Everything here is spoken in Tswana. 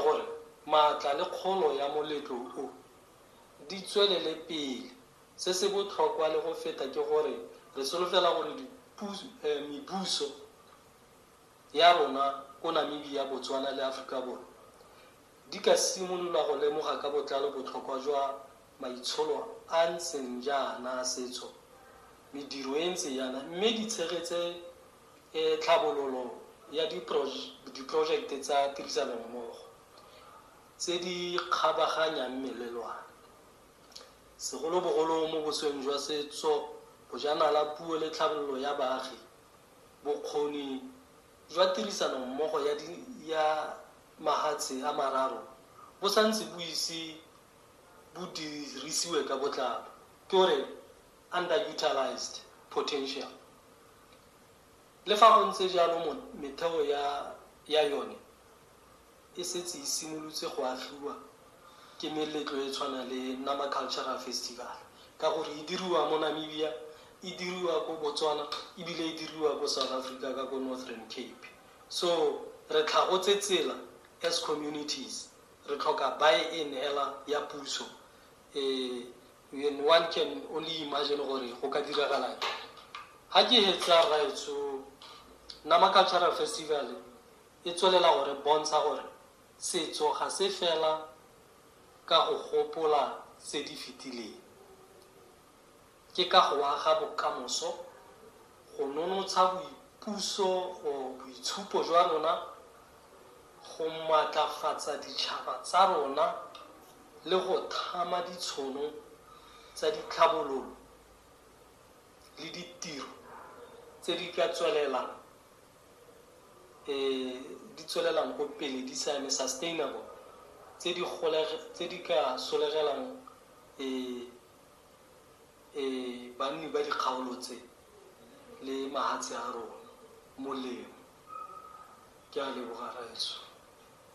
gore maatla le kgolo ya moletlo o di tswelele pele. Se se botlhokwa le go feta ke gore re solofela gore mebuso ya rona ko Namibia, Botswana le Aforika Borwa di ka simolola go lemoga ka botlalo botlhokwa jwa maitsholo a a ntseng jaana a setso, mediro e e ntseng jaana mme di tshegetse e tlhabololo ya diporojekte tsa tirisanommogo tse di kgabaganyang melelwane, segolobogolo mo bosweng jwa setso, bojanala, puo le tlhabololo ya baagi, bokgoni jwa tirisanommogo ya mahatshe a mararo bo santse bo ise bo dirisiwe ka botlalo, ke o re. underutilised potential. Le fa go ntse jalo metheo ya ya yone e setse e simolotse go agiwa ke meletlo e tshwana le Nama Cultural Festival ka gore e diriwa mo Namibia, e diriwa ko Botswana ebile e diriwa ko South Africa ka ko Northern Cape. So re tlhagotse tsela as communities, re tlhoka buy-in hela ya puso e. Then one can only imagine gore go ka diragalang. Ha ke hetsa rraetsho, Nama Cultural Festival e tswelela gore bontsha gore setso ga se fela ka go gopola tse di fetileng. Ke ka go aga bokamoso, go nonotsha boipuso or boitshupo jwa rona, go maatlafatsa ditšhaba tsa rona le go thama ditshono tsa ditlhabololo le ditiro tse di ka tswelelang di tswelelang ko pele di sa eme, sustainable, tse di ka solegelang Ee, banni ba dikgaolo tse le mahatshe a rona molemo. Ke a leboga, Rraetsho.